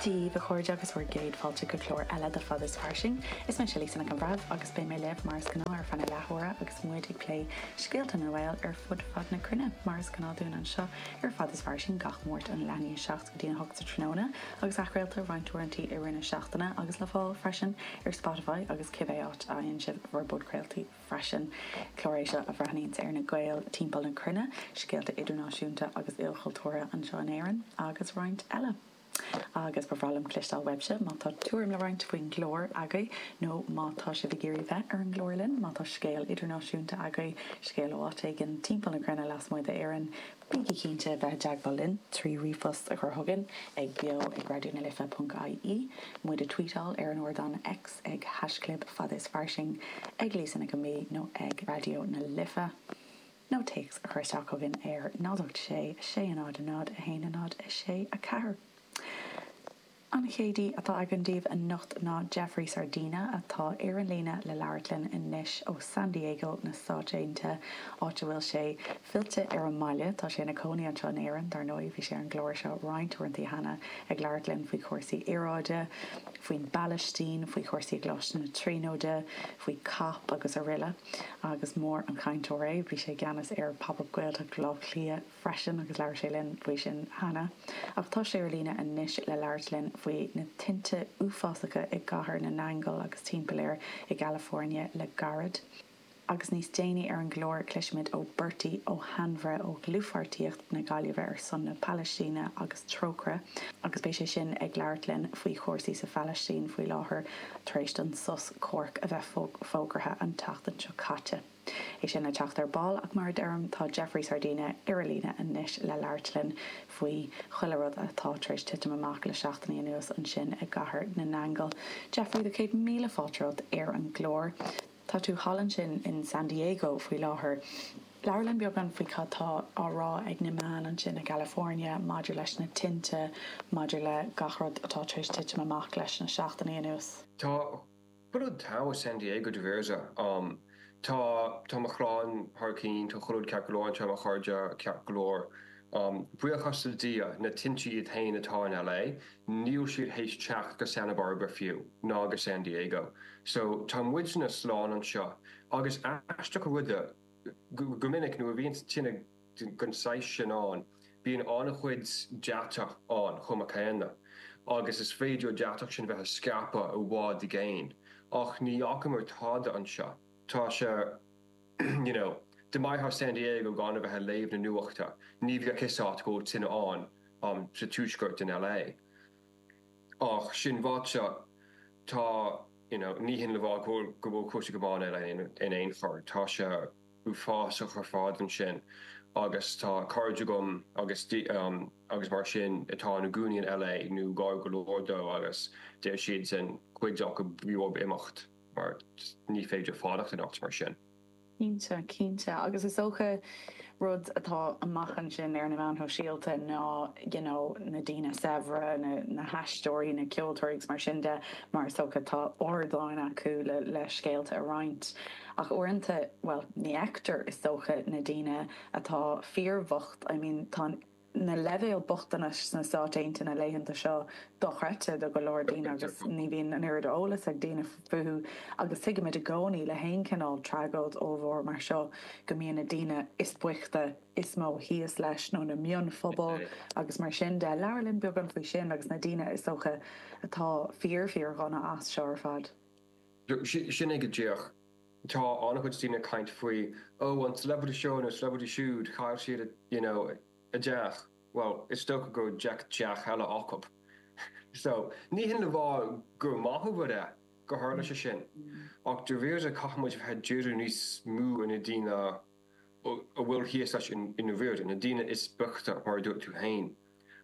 Dia daoibh a chairde agus bhur gcéad fáilte go clár eile de Fad is Fairsing. Is mé Lisa Nic an Bhreithimh agus beidh mé libh mar is gnáth ar feadh na leathuaire agus muid ag plé scéalta na nGael ar fud fad na cruinne mar is gnáth dúinn anseo ar Fad is Fairsing gach Máirt ón leath i ndiaidh 7-8 sa tráthnóna agus athchraolta roinnt uaireantaí i rith na seachtaine agus le fáil freisin ar Spotify agus cibé áit a fhaigheann sibh bhur bpodchraoltaí. freisin. Clár é seo a bhreathnaíonns ar na Gaeil timpeall na cruinne, scéalta idirnáisiúnta agus ilchultúrtha anseo in Éirinn agus roinnt eile. Agus ba bhreá liom cloisteáil uaibhse má tá tuairim le roinnt faoin gclár agaibh nó má tá sibh ag iarraidh bheith ar an gclár linn, má tá scéal idirnáisiúnta agaibh, scéal ó áit éigin timpeall na cruinne lasmuigh d'Éirinn, Bígí cinnte bheith i dteagmháil linn trí ríomhphost a chur chugainn ag beo ag Raidió na Life ponc IE, muid a tweetáil ar an ardán X ag haischlib Fad is Fairsing, ag Lisa Nic an B nó ag Raidió na Life, nó téacs a chur isteach chugainn ar 086 600 1064. An chéad aoi atá againn daoibh anocht ná Jeffrey Sardina atá ar an líne le labhairt linn anois ó San Diego sna Stáit Aontaithe, áit a bhfuil sé fillte ar an mbaile. Tá sé ina chónaí anseo in Éirinn, dar ndóigh. Bhí sé ar an gclár seo roinnt uaireanta cheana ag labhairt linn faoi chúrsaí aeráide, faoin bPalaistín, faoi chúrsaí i gColáiste na Tríonóide, faoi cap agus araile. Agus mór an cainteoir é. Bhí sé i gceannas ar Pop Up Gaeltacht Bhaile Átha Cliath. freisin agus labhair sé linn faoi sin cheana ach tá sé ar líne anois le labhairt linn faoi na tinte uafásacha i gCathair na nAingeal agus timpeall air i gCalifornia le gairid. Agus níos déanaí ar an gclár cloisfimid ó Bertie Ó hAinmhire ó Dhlúthpháirtíocht na Gaillimhe ar son na Palaistíne agus Trócaire agus beidh sé sin ag labhairt linn faoi chúrsaí sa Phalaistín faoi láthair tar éis don sos comhraic a bheith fógartha an tseachtain seo caite. é sin le teacht ar ball ach mar a deirim tá Jeffrey Sardina ar a líne anois le labhairt linn faoi chuile rud atá tar éis titim amach le seachtainí anuas ansin i gCathair na nAingeal. Jeffrey, tá céad míle fáilte romhat ar an gclár. Tá tú thall ansin in San Diego faoi láthair. Labhair linn beagán faoi cad tá á rá ag na meáin ansin i gCalifornia maidir leis na tinte, maidir le gach rud atá tar éis titim amach leis na seachtainí anuas. Tá Chuile rud togha San Diego déarfainn. Tá tá mo chlann thar cinn, tá chuile rud ceart go leor anseo, mo chairde ceart go leor. Buíochas le Dia, na tinte iad féin atá in LA, níl siad tar éis teacht go Santa Barbara fiú, ná go San Diego. So, tá muidne slán anseo. Agus aisteach an rud é, go minic nuair a bhíonns tine, den saghas sin ann. Bíonn an-chuid deatach ann chomh maith céanna, agus is féidir an deatach sin a bheith ag scaipeadh i bhfad i gcéin, ach ní fhacamar tada anseo. Tá sé, you know, dá mbeifeá i San Diego gan a bheith ag léamh na nuachta, ní bheadh a fhios a't go bhfuil tine ann sa tuaisceart in LA. Ach sin ráite, tá, you know, ní hin le rá go bhfuil cúrsaí go maith in LA in aon chor. Tá sé. uafásach ar fad ansin agus tá cairde agam agus agus mar sin atá ina gcónaí in LA nó gar go leor dó agus deir siadsan cuid acu b'éigean dóibh imeacht mar ní féidir fanacht anocht mar sin. Cinnte, cinnte agus is dócha rud atá amach ansin ar na meáin shóisialta ná you know na daoine saibhre, na haisteoirí, na ceoltóirí agus mar sin de mar is dócha tá ardáin acu le scéalta a roinnt. Ach uaireanta, bhuel, ní fheictear, is dócha, na daoine atá fíorbhocht, I mean tá na leibhéil bochtanais sna Stáit Aontaithe na laethanta seo dochreidte do go leor daoine agus ní bhíonn an oiread eolais ag daoine fúthu agus tuigimid i gcónaí le haon chineál tragóid ollmhór mar seo go mbíonn na daoine is boichte is mó thíos leis nó na mionphobail agus mar sin de. Labhair linn beagán faoi sin agus na daoine is dócha atá fíor fíor-dhona as seo ar fad. Sin é go díreach. Tá an-chuid daoine ag caint faoi, ó, an celebrity seo nó celebrity siúd, chaill siad a, you know, a dteach. Bhuel, is dócha go raibh deich dteach eile acu. So, ní hin le rá gur maith a rud é gur tharla sé sin, ach dáiríre caithfimid a bheith ag díriú níos mó ar na daoine a bhfuil thíos leis i ndáiríre, na daoine is boichte, mar a dúirt tú féin.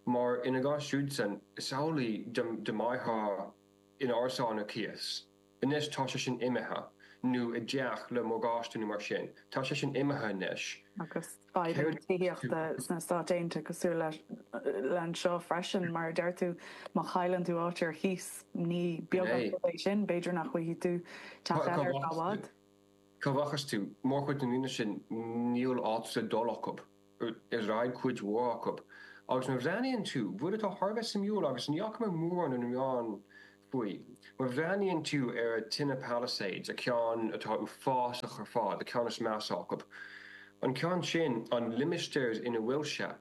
Mar ina gcás siúdsan, is amhlaidh, dá mbeifeá, in árasán ar cíos. Anois tá sé sin imithe, nó i dteach le morgáiste nó mar sin. Tá sé sin imithe anois. Agus fadhb na tithíochta sna Stáit Aontaithe cosúil le anseo freisin, mar a deir tú, má chailleann tú áit ar cíos, ní beag an rud é sin, b'fhéidir nach bhfaighidh tú teach eile ar feadh i bhfad. Cá rachas tú? Mórchuid na ndaoine sin, níl áit le dul acu. D'fhreagair cuid mhór acu. Agus má bhreathnaíonn tú, rud atá thar a bheith suimiúil agus ní fhaca mé mórán ar na meáin faoi, má bhreathnaíonn tú ar an tine Palisades, an ceann atá uafásach ar fad, an ceann is measa acu, an ceann sin, an limistéar ina bhfuil sé,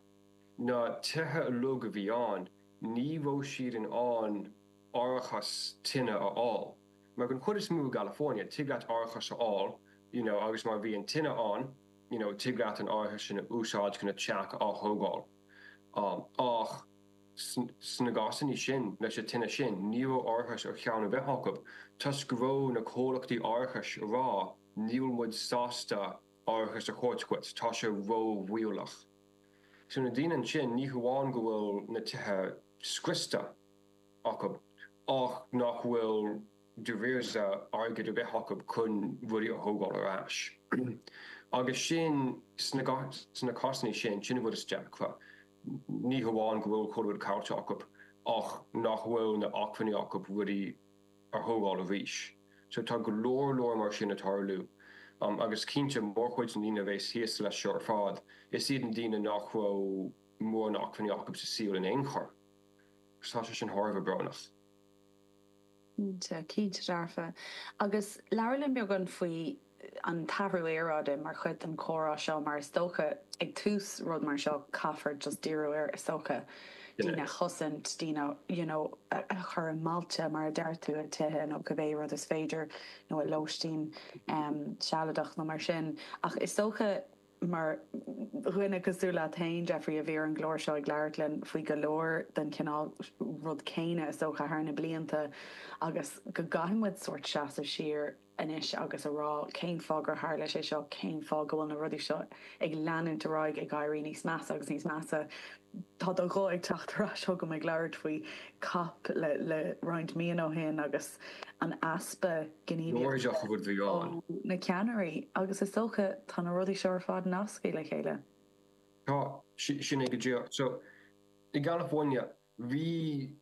na tithe uilig a bhí ann, ní raibh siad in ann árachas tine a fháil. Mar an chuid is mó i gCalifornia, tig leat árachas a fháil, you know, agus má bhíonn tine ann, you know, tig leat an árachas sin a úsáid chun a teach á thógáil. Ach sna cásannaí sin, leis an tine sin, ní raibh árachas ar cheann ar bith acu, toisc go raibh na comhlachtaí árachais ag rá, níl muid sásta árachas a thabhairt dhuit, tá sé ró-bhaolach. So na daoine ansin, ní hamháin go bhfuil na tithe scriosta acu, ach nach bhfuil. deoir ar bith airgead ar bith acu chun rudaí a thógáil ar ais. Agus sin, sna cásannaí sin, sin an rud is deacra. Ní hamháin go bhfuil chuile rud caillte acu ach nach bhfuil na acmhainní acu rudaí a thógáil arís. So tá go leor leor mar sin ag tarlú. Agus cinnte, mórchuid na ndaoine a bheas thíos leis seo ar fad, is iad na daoine nach raibh mórán acmhainní acu sa saol in aon chor. So tá sé sin thar a bheith brónach. Cinnte, cinnte dearfa. Agus labhair liom beagán faoi an t-athrú aeráide mar chuid den comhrá seo mar is dócha ag tús rud mar seo caithfear just díriú ar is dócha, daoine a chosaint, daoine you know a chur i mbailte mar a deir tú, i tithe nó cibé rud is féidir nó i lóistín sealadach nó mar sin ach is dócha, Mar dhuine cosúil leat féin, Diarmuid, a bhí ar an gclár seo ag labhairt linn faoi go leor den chineál rud céanna is dócha thar na blianta agus go gcaithfidh muid sórt seasamh siar anois agus a rá cén fáth gur tharla sé seo, cén fáth go bhfuil na rudaí seo ag leanúint ar aghaidh ag éirí níos measa agus níos measa. Tá do ghuth ag teacht ar ais chugam ag labhairt faoi COP roinnt míonna ó shin agus an easpa gnímh ó na ceannairí agus is dócha tá na rudaí seo ar fad nasctha le chéile. Tá, sin é go díreach. So, i gCalifornia, bhí,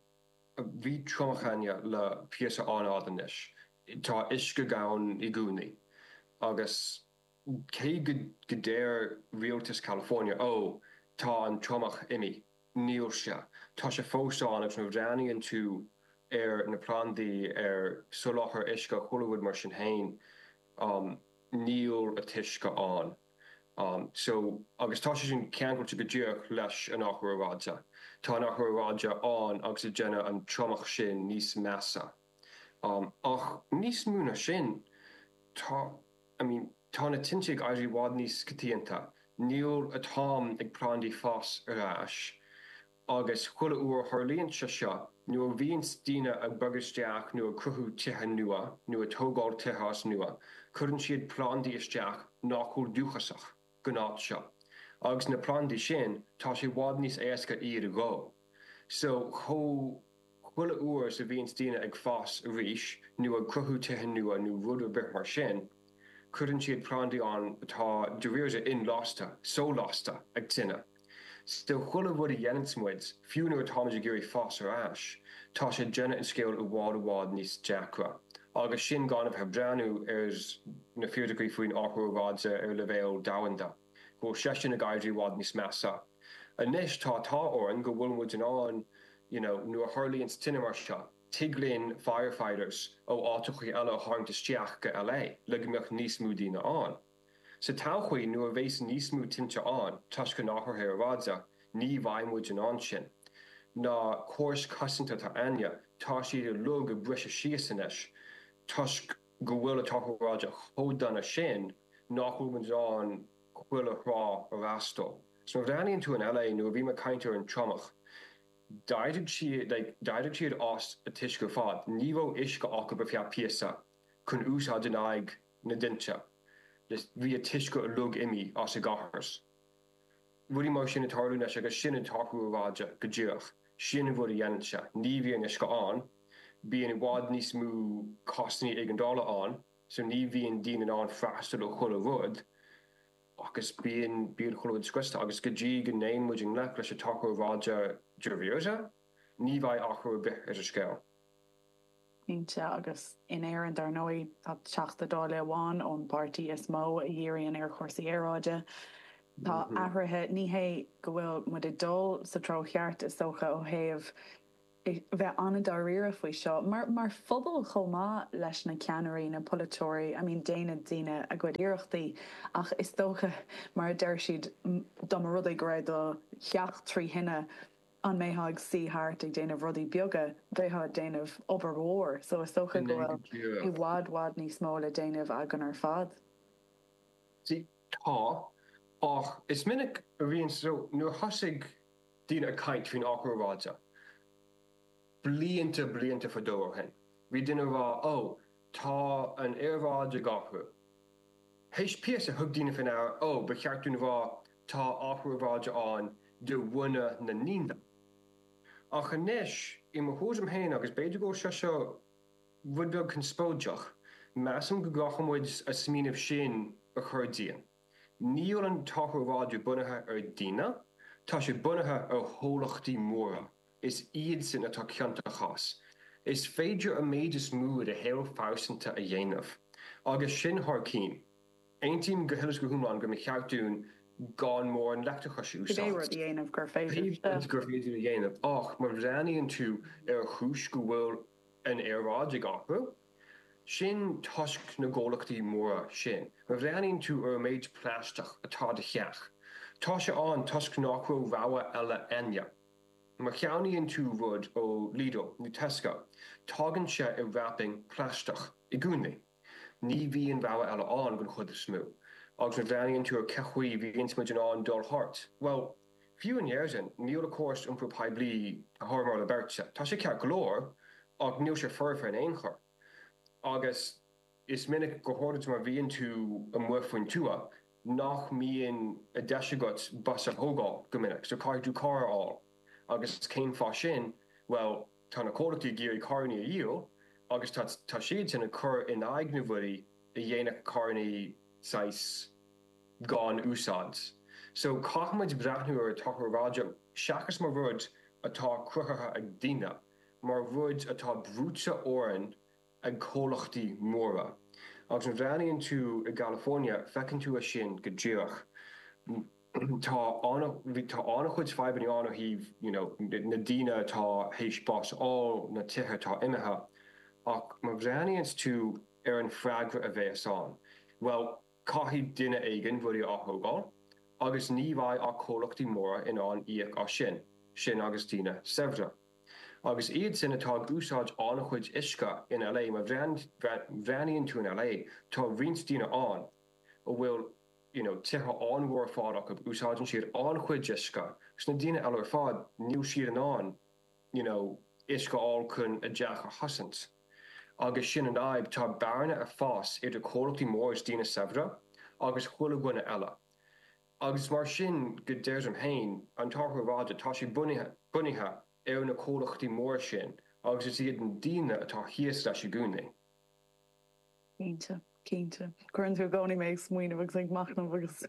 bhí triomach ann le píosa an-fhada anois. Tá uisce gann i gcónaí agus. Cé go ndeir rialtas California, Ó, tá an triomach imithe, níl sé, tá sé fós ann agus nuair a bhreathnaíonn tú ar na plandaí, ar soláthar uisce chuile rud mar sin, níl an t-uisce ann. So, agus tá sé sin ceangailte go díreach leis an athrú aeráide. Tá an t-athrú aeráide ann agus ag déanamh an triomach sin níos measa. Ach níos mó ná sin, tá, I mean, tá na tinte ag éirí i bhfad níos coitianta. Níl, an t-am ag plandaí fás ar ais agus chuile uair a tharlaíonn sé seo, nuair a bhíonns daoine ag bogadh isteach nó ag cruthú tithe nua nó ag tógáil tithe as nua, cuireann siad plandaí isteach nach bhfuil dúchasach. gnáth seo. Agus na plandaí sin, tá sé i bhfad níos éasca iad a dhó. So, chuile uair is a bhíonns daoine ag fás arís, nó ag cruthú tithe nua nó rud ar bith mar sin, cuireann siad plandaí ann atá, dáiríre, inlasta, so-lasta, ag tine. So chuile rud a dhéananns muid, fiú nuair atáimid ag iarraidh fás ar ais, tá sé ag déanamh an scéil i bhfad i bhfad níos deacra. Agus sin gan a bheith ag breathnú ar na fíricí faoin athrú aeráide ar leibhéal domhanda, go bhfuil seisean ag éirí i bhfad níos measa. Anois tá an t-ádh orainn go bhfuil muid in ann, you know, nuair a tharlaíonns tine mar seo, tig linn firefighters ó áiteachaí eile a tharraingt isteach go LA le go mbeadh níos mó daoine ann. Sa todhchaí nuair a bheas níos mó tinte ann toisc an athraithe aeráide ní bheidh muid in ann sin. Na córais cosanta atá againne tá siad uilig ag briseadh síos anois toisc go bhfuil an t-athrú aeráide chomh dona sin nach bhfuil muid in ann chuile thrá a fhreastal. So má bhreathnaíonn tú in LA nuair a bhíomar ag caint ar an triomach d'éirigh siad like d'éirigh siad as an t-uisce ar fad. Ní raibh uisce acu ar feadh píosa chun úsáid in aghaidh na. na dtinte. Bhí an t-uisce uilig imithe as an gcóras. Rudaí mar sin ag tarlú anois agus sin an t-athrú aeráide, go díreach. Sin an rud a dhéanann sé. Ní bhíonn uisce ann, bíonn i bhfad níos mó cásannaí éigeandála ann, so ní bhíonn daoine in ann freastal ar chuile rud agus bíonn, bíonn chuile rud scriosta agus go dtí go dtéann muid i ngleic leis an athrú aeráide, dáiríre, ní bheidh athrú ar bith ar an scéal. Cinnte, agus in Éirinn dar ndóigh, tá Teachta Dáile amháin ón bpáirtí is mó a dhíríonn ar chúrsaí aeráide. Tá athruithe, ní hé go bhfuil muid ag dul sa treo cheart is dócha ó thaobh bheith an-dáiríre faoi seo, mar phobal chomh maith leis na ceannairí, na polaiteoirí, I mean déanann daoine a gcuid iarrachtaí ach is dócha mar a deir siad, dá mba rud é go raibh do theach trí thine, an mbeifeá ag suí thart ag déanamh rudaí beaga, bheifeá ag déanamh obair mhór so is dócha go bhfuil i bhfad, bhfad níos mó le déanamh againn ar fad. Sea, tá, ach is minic a bhíonn so nuair thosaigh daoine ag caint faoin athrú aeráide, Blianta blianta fadó ó shin bhí daoine ag rá Ó, tá an aeráid ag athrú. Th'éis píosa thug daoine faoi ndeara Ó, ba cheart dúinn a rá tá athrú aeráide ann de bhunadh na ndaoine. Ach anois i mo thuairim féin, agus b'fhéidir go bhfuil sé seo rud beag conspóideach, measaim go gcaithfidh muid an smaoineamh sin a chur dínn. Níl an t-athrú aeráide bunaithe ar dhaoine, tá sé bunaithe ar chomhlachtaí móra. Is iad sin atá ciontach as. Is féidir an méid is mó i do shaol pearsanta a dhéanamh agus sin thar cinn. Aontaím go huile is go hiomlán go mba cheart dúinn gan mórán leictreachais a úsáid. Cibé rud gur féidir a dhéanamh. Ach má bhreathnaíonn tú ar an chúis go bhfuil an aeráid ag athrú, sin toisc na gcomhlachtaí móra sin. Má bhreathnaíonn tú ar an méid plaisteach atá i do theach, tá sé ann toisc nach raibh rogha eile ann. Má cheannaíonn tú rud ó Lidl nó Tesco, tagann sé i wrapping plaisteach i gcónaí. Ní bhíonn rogha eile ann don chuid is mó. Agus má bhreathnaíonn tú ar cén chaoi bhíonns muid in ann dul thart, bhuel, fiú in Éirinn, níl an córas iompair poiblí thar moladh beirte. Tá sé ceart go leor, ach níl sé foirfe in aon chor. Agus. Is minic go háirid má bhíonn tú amuigh faoin tuath nach mbíonn deis agat bus a thógáil go minic, so caithfidh tú carr a fháil. Agus cén fáth sin? Bhuel, tá na comhlachtaí ag iarraidh carrannaí a dhíol agus tá siadsan ag cur in aghaidh na bhforbairtí a dhéanfadh carrannaí saghas gan úsáid. So caithfimid breathnú ar an t-athrú aeráide seachas mar rud atá cruthaithe ag daoine, mar rud atá brúite orainn ag comhlachtaí móra. Agus má bhreathnaíonn tú i gCalifoirnea feiceann tú é sin go díreach. Tá an-chuid fadhbanna ann ó thaobh you know na daoine atá théis bás a fháil, na tithe atá imithe. Ach má bhreathnaíonns tú ar an freagra a bhéas ann, bhuel caithfidh duine éigin rudaí a ath-thógáil agus ní bheidh ach comhlachtaí móra in ann íoc as sin, sin agus daoine saibhre. Agus iad sin atá ag úsáid an-chuid uisce in LA, má bhreathnaíonn tú in LA, tá roinnt daoine ann a bhfuil you know tithe an-mhór ar fad acu, úsáideann siad an-chuid uisce. Agus na daoine eile ar fad, níl siad in ann you know uisce a fháil chun a dteach a chosaint. Agus sin an fhadhb, tá bearna ag fás idir comhlachtaí móra is daoine saibhre agus chuile dhuine eile. agus mar sin go deirtim fhéin, an t-athrú aeráide, tá sé bunaithe ar na comhlachtaí móra sin agus is iad na daoine atá thíos leis i gcónaí. Cinnte, cinnte. Cuireann tú i gcónaí mé ag smaoineamh agus ag machnamh agus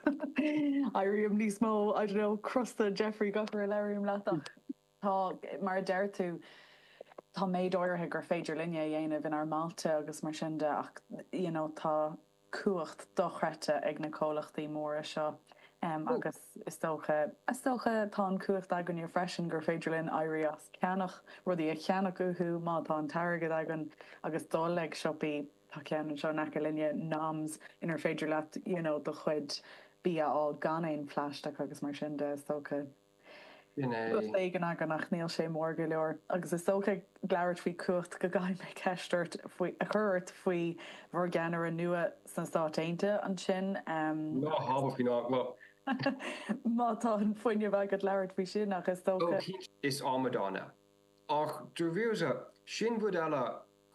éirím níos mó, I don't know, crosta, Jeffrey, gach uair a labhraím leat ach. Tá, mar a deir tú, tá méid áirithe gur féidir linne a dhéanamh inár mbailte agus mar sin de ach you know tá cumhacht dochreidte ag na comhlachtaí móra seo agus is dócha, is dócha tá an chumhacht againne freisin gur féidir linn éirí as ceannach rudaí a cheannach uathu má tá an t-airgead againn agus dul ag siopaí, tá ceann anseo in aice linne, Noms, inar féidir leat you know do chuid bia a fháil gan aon phlaisteach agus mar sin de is dócha. Rud éigin againn ach níl sé mór go leor agus is dócha ag labhairt faoi chumhacht go gcaithfidh mé ceist a chur ort faoi bhur gceannaire nua sna Stáit Aontaithe ansin ehm. Ná habair faoi ná go. Má tá an fuinneamh agat labhairt faoi sin ach is dócha. Ó cinnte, is amadán é. Ach dáiríre, sin rud eile,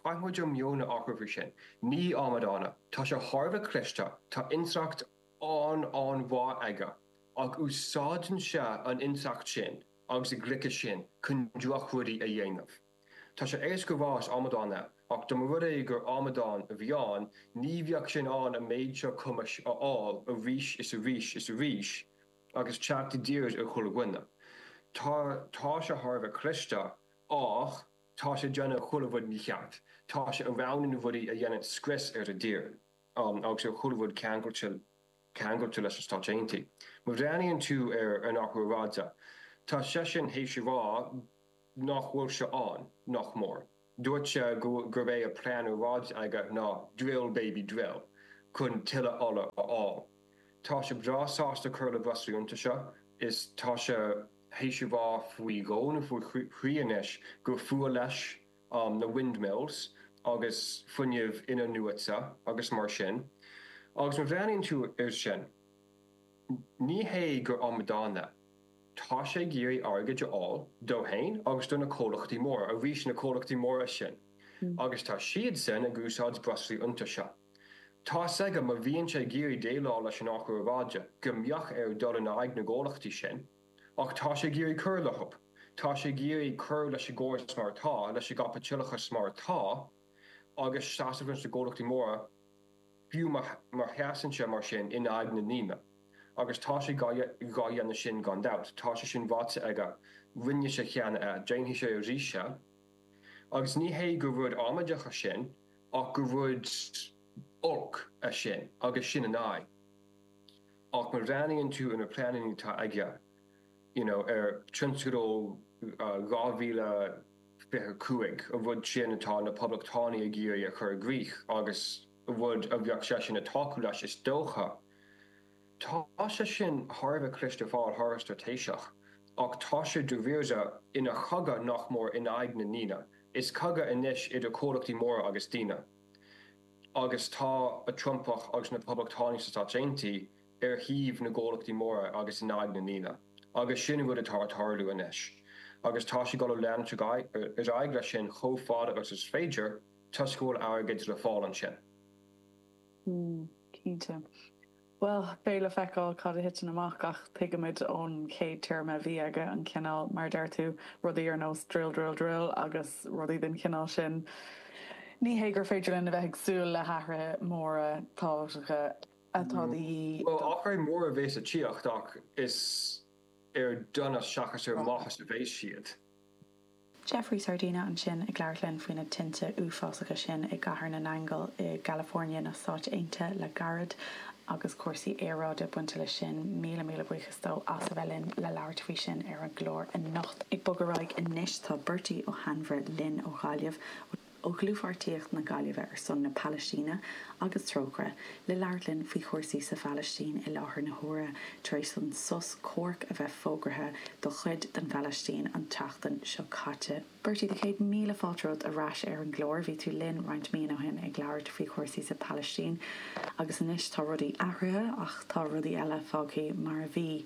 caithfidh muid an meon a athrú faoi sin. Ní amadán é. Tá sé thar a bheith cliste, tá intleacht an-mhaith aige ach úsáideann sé an intleacht sin agus an ghliceas sin chun drochrudaí a dhéanamh. Tá sé éasca a rá is amadán é ach dá mba rud é gur amadán a bhí ann ní bheadh sé in ann an méid seo cumais a fháil arís is arís is arís agus teacht i dtír ar chuile dhuine. Tá tá sé thar a bheith cliste ach tá sé ag déanamh chuile rud mícheart. Tá sé ag roghnú na rudaí a dhéanann scrios ar an tír. agus ar chuile rud ceangailte leis na Stáit Aontaithe. Má bhreathnaíonn tú ar an athrú aeráide, tá seisean théis a rá nach bhfuil sé ann, nach mór. Dúirt sé gurb é a plean aeráide aige ná drill baby drill chun tuilleadh ola a fháil. Tá sé breá sásta cur le breoslaí iontaise, tá sé théis a rá faoi dhó nó faoi thrí anois gur fuath leis na windmills agus fuinneamh in-athnuaite agus mar sin agus má bhreathnaíonn tú ar sin ní hé gur amadán é, tá sé ag iarraidh airgid a fháil dó fhéin agus do na comhlachtaí móra, arís na comhlachtaí móra sin agus tá siadsan ag úsáid breoslaí iontaise. Tá's agam má bhíonn sé ag iarraidh déileáil leis an athrú aeráide go mbeadh air dul in aghaidh na gcomhlachtaí sin, Ach tá sé ag iarraidh cur le hola. Tá sé ag iarraidh cur leis an gcóras mar atá, leis an gcaipitileachas mar atá, agus seasamh leis na comhlachtaí móra, fiú má sheasann sé mar sin in aghaidh na ndaoine. Agus tá sé dhá dhéanamh sin gan dabht. Tá sé sin ráite aige. Rinne sé cheana é. Déanfaidh sé arís é. Agus ní hé gur rud amaideach é sin, ach gur rud olc é sin, agus sin an fhadhb. Ach má bhreathnaíonn tú ar na pleananna atá aige, you know, ar Thionscadal 2025, an rud sin atá na Poblachtánaigh ag iarraidh a chur i gcrích agus an rud a bheadh seisean ag tacú leis, is dócha, tá sé sin thar a bheith cliste fíor-straitéiseach. Ach tá sé dáiríre ina chogadh nach mór in aghaidh na ndaoine. Is cogadh anois idir comhlachtaí móra agus daoine. agus tá an Trumpach agus na Poblachtánaigh sna Stáit Aontaithe ar thaobh na gcomhlachtaí móra agus in aghaidh na ndaoine, agus sin an rud atá ag tarlú anois, agus tá siad ag dul a leanúint ar aghaidh leis sin chomh fada agus is féidir, toisc go bhfuil airgead le fáil ansin. Mm, cinnte. Bhuel, beidh le feiceáil cad a thiteann amach ach tuigimid ón chéad téarma a bhí aige, an cineál, mar a deir tú, rudaí ar nós drill, drill, drill agus rudaí den chineál sin. Ní hé gur féidir linn a bheith ag súil le hathruithe móra tábhachtacha atá de dhíth don. Bhuel, athruithe móra a bheidh ag tíocht ach is ar donas seachas ar mhaitheas a bheidh siad. Jeffrey Sardina ansin ag labhairt linn faoi na tinte uafásacha sin i gCathair na nAingeal i gCalifornia na Stáit Aontaithe le gairid agus cúrsaí aeráide bainte leis sin. Míle míle buíochas dó as a bheith linn le labhairt faoi sin ar an gclár anocht. Ag bogadh ar aghaidh anois tá Bertie Ó hAinmhire linn ó Ghaillimh. ó Dhlúthpháirtíocht na Gaillimhe ar son na Palaistíne agus Trócaire, le labhairt linn faoi chúrsaí sa Phalaistín i láthair na huaire tar éis don sos comhairc a bheith fógraithe do chuid den Phalaistín an tseachtain seo caite. Bertie, do chéad míle fáilte romhat ar ais ar an gclár. Bhí tú linn roinnt míonna ó shin ag labhairt faoi chúrsaí sa Phalaistín agus anois tá rudaí athraithe ach tá rudaí eile fágthaí mar a bhí.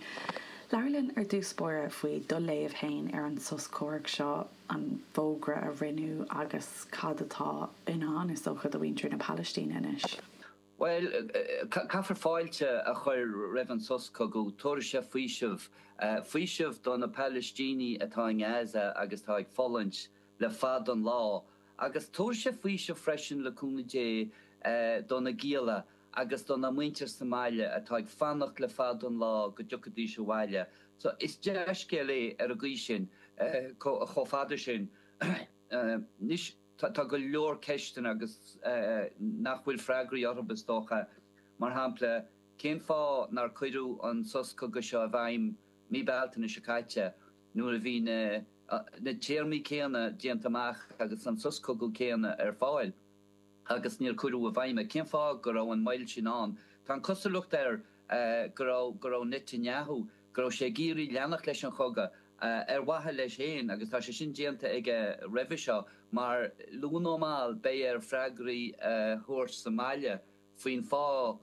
Labhair linn ar dtús báire faoi do léamh fhéin ar an sos comhairc seo. an fógra a rinneadh agus cad atá i ndán, is dócha, do mhuintir na Palaistíne anois. Bhuel, caithfear fáilte a chur roimh an sos cogaidh. Tabharfaidh sé faoiseamh. Faoiseamh do na Palaistínigh atá i nGaza agus atá ag fulaingt le fada an lá. Agus tabharfaidh sé faoiseamh freisin, le cúnamh Dé, do na gialla. agus do na muintir sa mbaile atá ag fanacht le fada an lá go dtiocfaidís abhaile so is dea-scéal é ar an gcaoi sin chomh fada sin anois tá go leor ceisteanna agus nach bhfuil freagraí orthub is dócha mar shampla cén fáth nár cuireadh an sos cogaidh seo i bhfeidhm mí Bealtaine seo caite nuair a bhí na téarmaí céanna déanta amach agus an sos cogaidh céanna ar fáil. agus níor cuireadh i bhfeidhm é. Cén fáth go raibh an mhoill sin ann? Tá an cosúlacht air go raibh go raibh Netanyahu go raibh sé ag iarraidh leanacht leis an chogadh ar mhaithe leis féin agus tá sé sin déanta aige roimhe seo mar luath nó mall beidh air freagraí a thabhairt sa mbaile faoin fáth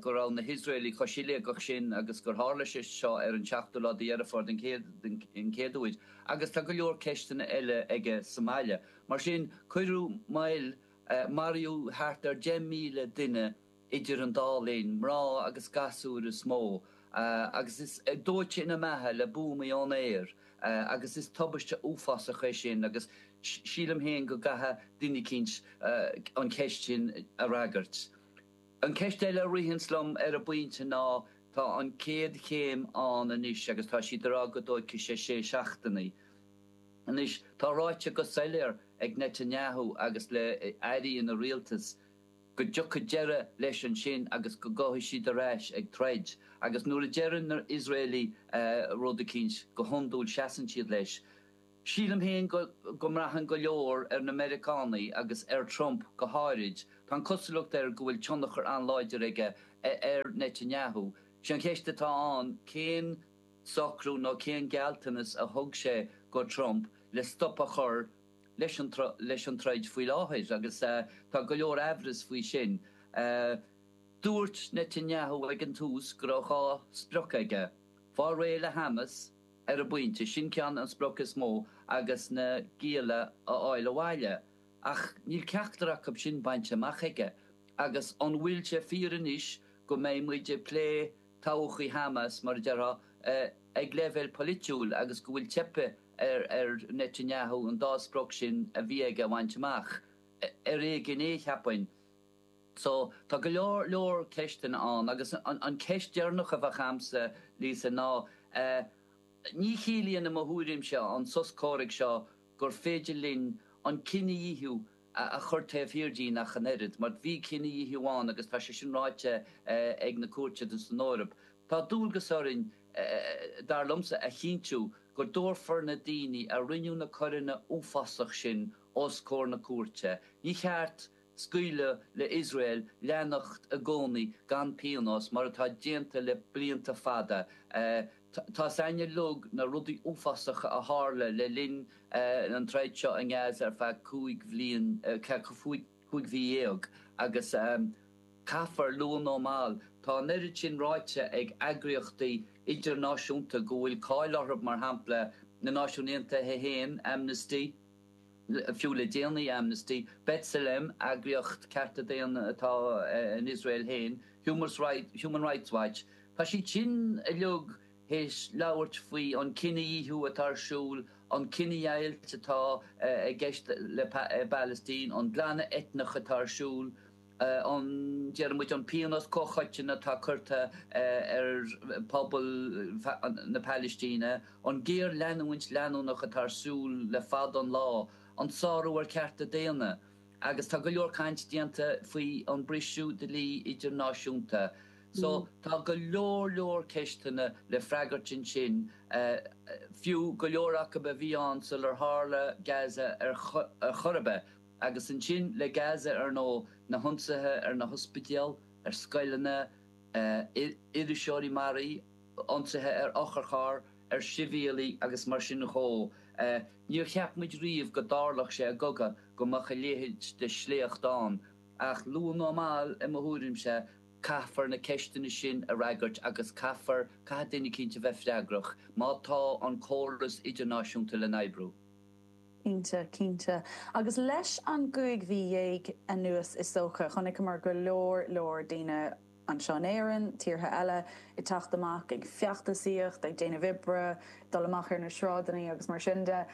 go raibh na hIosraeligh chomh siléigeach sin agus gur tharla sé seo ar an seachtú lá de Dheireadh Fómhair den chéad uair agus tá go leor ceisteanna eile aige sa mbaile. Mar sin, cuireadh moill, maraíodh thart ar 10,000 duine idir an dá linn, mná agus gasúir is mó, agus is dóite ina mbeatha le buamaí ón aer agus is tubaiste uafásach í sin agus sílim féin go gcaithfidh duine eicínt an cheist sin a fhreagairt. An ceist eile a ritheanns liom ar an bpointe ná tá an chéad chéim ann anois agus tá siad ar aghaidh go dtí cúig, sé sé seachtainí. Anois tá ráite go soiléir ag Netanyahu agus le airí ina rialtas go dtiocfaidh deireadh leis ansin agus go gcuirfidh siad ar ais ag troid agus nuair a deireann na hIosraelaigh rud eicínt go hiondúil seasann siad leis. Sílim féin go mbraitheann go leor ar na Meiriceánaigh agus ar Trump go háirid, tá an cosúlacht air go bhfuil tionchar an-láidir aige ar Netanyahu. Sé an cheist atá ann cén socrú nó cén gealltanas a thug sé do Trump le stop a chur leis an troid faoi láthair agus tá go leor aimhreas faoi sin. Dúirt Netanyahu ag an tús go raibh dhá sprioc aige, fáil réidh le Hamas, ar an bpointe, sin ceann an sprioc is mó agus na gialla a fháil abhaile ach níl ceachtar acu sin bainte amach aige agus an bhfuil sé fíor anois go mbeidh muid ag plé todhchaí Hamas, mar a déarfá, ag leibhéal polaitiúil agus go bhfuil teipthe ar Netanyahu an dá sprioc sin a bhí aige a bhaint amach? Ar éigean é, cheapfainn. So, tá go leor leor ceisteanna ann agus an ceist deireanach a bheadh a'msa, Lisa, ná ní chiallaíonn i mo thuairimse an sos comhraic seo gur féidir linn an cinedhíothú a chur taobh thiar dínn ach an oiread, mar bhí cinedhíothú ann agus tá sé sin ráite ag na cúirteanna san Eoraip. Tá dualgas orainn, dar liomsa, a chinntiú go dtabharfar na daoine a rinne na coireanna uafásacha sin os comhair na cúirte. Ní cheart. Scaoileadh le Iosrael leanacht i gcónaí gan pionós, mar atá déanta le blianta fada. Tá sé in éineacht le na rudaí uafásacha a tharla le linn an troid seo i nGaza ar feadh cúig bhliain, cúig mhí dhéag, agus caithfear luath nó mall, tá an oiread sin ráite ag eagraíochtaí idirnáisiúnta go bhfuil cáil orthu, mar shampla na Náisiúin Aontaithe féin, Amnesty. Fiú le déanaí Amnesty, B'Tselem, eagraíocht cearta daonna atá in Iosrael féin, Human Rights Watch, tá siad sin uilig théis labhairt faoi an cinedhíothú atá ar siúl, an cinedheighilt atá i gceist i bPalaistín, an glanadh eitneach atá ar siúl. a ndeir muid an pionós comhchoiteann atá curtha ar phobal na Pailistíne, an géarleanúint leanúnach atá ar siúl le fada an lá, an sárú ar chearta daonna, agus tá go leor caint déanta faoi an briseadh dlí idirnáisiúnta. So tá go leor leor ceisteanna le freagairt ansin, fiú go leor acu a bhí ann sular tharla Gaza ar chor ar bith. Agus ansin le Gaza ar ndóigh, na hionsaithe ar na hospidéil, ar scoileanna, iriseoirí maraithe, ionsaithe ar otharcharr, ar shibhialaigh agus mar sin dhó. Ní cheapfadh muid riamh go dtarlódh sé i gcogadh go mbeadh a leithéid de shléacht ann, ach luath nó mall, i mo thuairimse, caithfear na ceisteanna sin a fhreagairt agus caithfear, caithfidh duine cinnte bheith freagrach má tá an córas idirnáisiúnta le n-oibriú. Cinnte, cinnte. Agus leis an gcúig mhí dhéag anuas is dócha, chonaiceamar go leor leor daoine, anseo in Éirinn, tíortha eile, ag teacht amach ag feachtasaíocht, ag déanamh oibre, dul amach ar na sráideannaí agus mar sin de.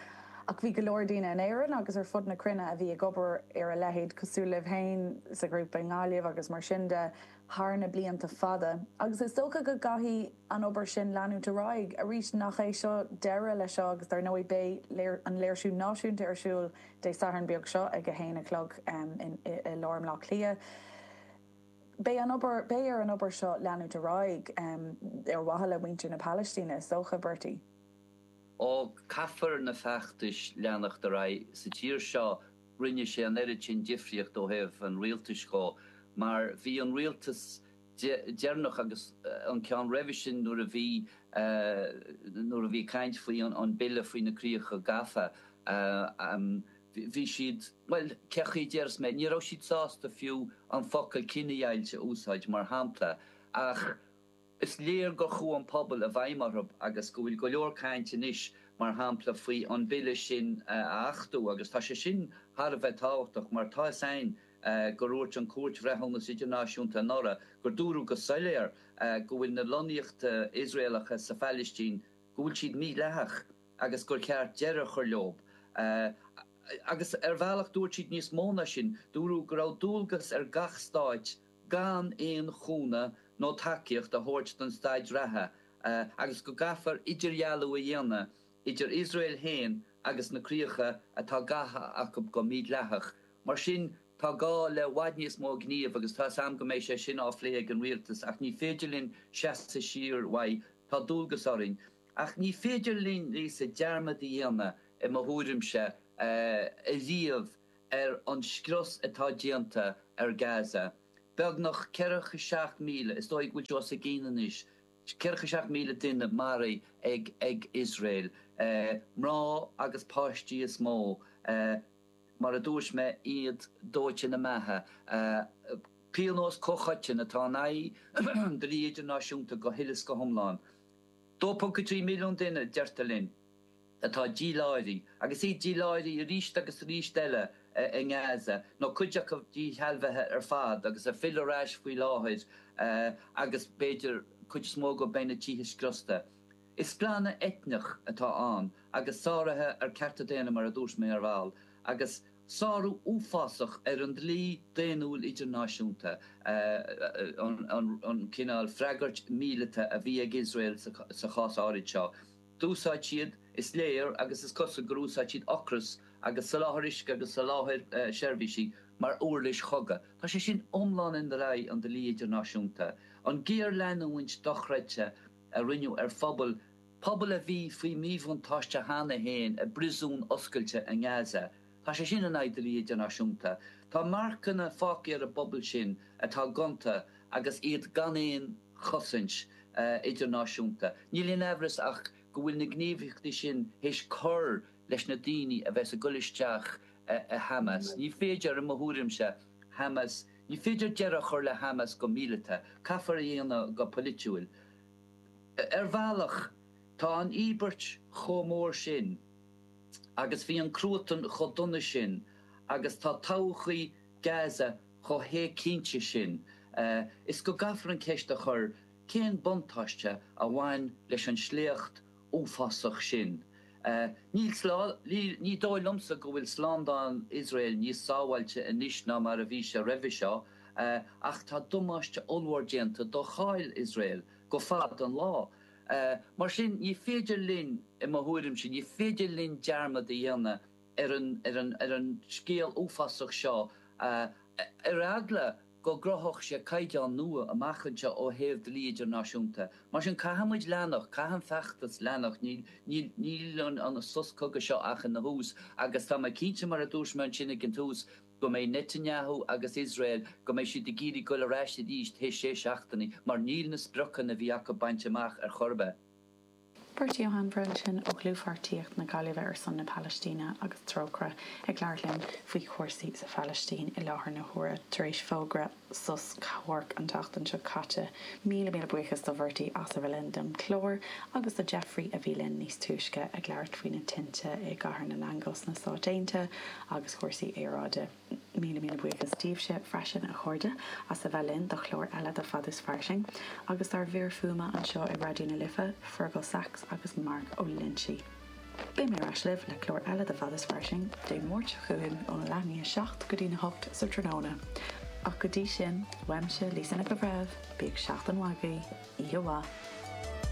Ach bhí go leor daoine in Éirinn agus ar fud na cruinne a bhí ag obair ar a leithéid, cosúil libh féin sa ghrúpa i nGaillimh agus mar sin de. thar na blianta fada agus is dócha go gcaithfidh an obair sin leanúint ar aghaidh. Arís, nach é seo deireadh le seo agus dar ndóigh beidh an léirsiú náisiúnta ar siúl Dé Sathairn beag seo ag a haon a chlog i lár Bhleá Cliath. Beidh, beidh ar an obair seo leanúint ar aghaidh ar mhaithe le muintir na Palaistíne is dócha, Bertie. Ó, caithfear na feachtais leanacht ar aghaidh sa tír seo. rinne sé an oiread sin difríocht ó thaobh an rialtais dhó mar bhí an rialtas deireanach agus an ceann roimhe sin nuair a bhí nuair a bhí caint faoi an bille faoi na críocha gafa bhí siad bhuel cé chaoi a déarfas mé ní raibh siad sásta fiú an focal cinedheighilt a úsáid mar shampla ach Is léir gur chuaigh an pobal i bhfeidhm orthu agus go bhfuil go leor cainte anois mar shampla faoi an bille sin a achtú agus tá sé sin thar a bheith tábhachtach mar tá 'fhios a'ainn gur dhúirt an Cúirt Bhreithiúnas Idirnáisiúnta anuraidh gur dúradh go soiléar go bhfuil na lonnaíochta Iosraelacha sa Phailistín go bhfuil siad mídhleathach agus gur cheart deireadh a chur leob agus ar bhealach dúirt siad níos mó ná sin, dúradh go raibh dualgas ar gach stát. gan aon chúnamh nó tacaíocht a thabhairt don staid reatha agus go gcaithfear idirdhealú a dhéanamh idir Iosrael féin agus na críocha atá gafa acu go mídhleathach. Mar sin, tá gá le bhfad níos mó gnímh agus tá a fhios 'am go mbeidh sé sin á phlé ag an rialtas ach ní féidir linn seasamh siar uaidh, tá dualgas orainn. Ach ní féidir linne, sa, dearmad a dhéanamh, i mo thuairimse, ariamh. ar an scrios atá déanta ar Gaza. Beagnach ceathracha seacht míle, is dóigh go bhfuil sé os a chionn anois, ceathracha seacht míle duine maraithe ag Iosrael. Mná agus páistí is mó, mar a dúirt mé, iad dóite ina mbeatha. Pionós comhchoiteann atá in aghaidh an dlí idirnáisiúnta go huile is go hiomlán. 2.3 milliún duine, deirtear linn. atá díláithrithe, agus iad díláithrithe arís agus arís eile, i nGaza, nó cuid acu díshealbhaithe ar fad agus ag filleadh ar ais faoi láthair agus, b'fhéidir, cuid is mó acu go mbeidh na tithe scriosta. Is glanadh eitneach atá ann agus sáruithe ar cearta daonna, mar a dúirt mé ar ball, agus sárú uafásach ar an dlí daonnúil idirnáisiúnta, an cineál freagairt mhíleata a bhí ag Iosrael sa chás áirid seo. d'úsáid siad, is léir agus is cosúil gur úsáid siad ocras agus soláthar uisce agus soláthar seirbhísí mar uirlis chogadh. Tá sé sin iomlán in aghaidh an dlí idirnáisiúnta. An ghéarleanúint dochreidte a rinneadh ar phobal, pobal a bhí faoi mhíbhuntáiste cheana féin i bpriosún oscailte i nGaza, Tá sé sin in aghaidh an dlí idirnáisiúnta. Tá marcanna fágtha ar an bpobal sin atá gonta agus iad gan aon chosaint idirnáisiúnta. Níl aon amhras ach go bhfuil na gníomhaíochtaí sin théis cur leis na daoine a bheas ag dul isteach i Hamas. Ní féidir, i mo thuairimse, Hamas, ní féidir deireadh a chur le Hamas go míleata. Caithfear é a dhéanamh go polaitiúil. Ar bhealach, tá an íobairt chomh mór sin. agus bhí an cruatan chomh dona sin agus tá todhchaí Gaza chomh héigcinnte sin is go gcaithfear an cheist a chur cén buntáiste a bhain leis an sléacht uafásach sin? Ní dóigh liomsa go bhfuil slándáil Iosrael níos sábháilte anois ná mar a bhí sé roimhe seo ach tá damáiste ollmhór déanta do cháil Iosrael go fada an lá. Mar sin, ní féidir linn, i mo thuairimse, ní féidir linn dearmad a dhéanamh ar an scéal uafásach seo, ar eagla go gcruthódh sé caighdeán nua amach anseo ó thaobh dlí idirnáisiúnta. Mar sin, caithfidh muid leanacht, caithfidh an feachtas leanacht, níl an sos cogaidh seo ach ina thús agus tá mé cinnte, mar a dúirt mé ansin ag an tús, go mbeidh Netanyahu agus Iosrael, go mbeidh siad ag iarraidh goil ar ais arís théis sé seachtainí, mar níl na spriocanna a bhí acu bainte amach ar chor ar bith. Bertie Ó hAinmhire ansin ó Dhlúthphairtíocht na Gaillimhe ar son na Palaistíne agus Trócaire ag labhairt linn faoi chúrsaí sa Phalaistín i láthair na huaire tar éis fógra sos comhairc an tseachtain seo caite. Míle míle buíochas do Bhertie as a bheith linn don chlár agus do Jeffrey a bhí linn níos túisce ag labhairt faoi na tinte i gCathair na nAingeal sna Stáit Aontaithe agus cúrsaí aeráide. Míle míle buíochas daoibhse freisin a chairde as a bheith linn do chlár eile de Fad is Fairsing agus dár bhfir fuaime anseo i Raidió na Life, Fergal Sachs agus Mark Ó Loinsigh. Beidh mé ar ais libh le clár eile de Fad is Fairsing Dé Máirt seo chugainn óna leath i ndiaidh a seacht go dtí a hocht sa tráthnóna. Ach go dtí sin, uaimse, Lisa Nic an Bhreithimh, bíodh seachtain mhaith agaibh, oíche mhaith!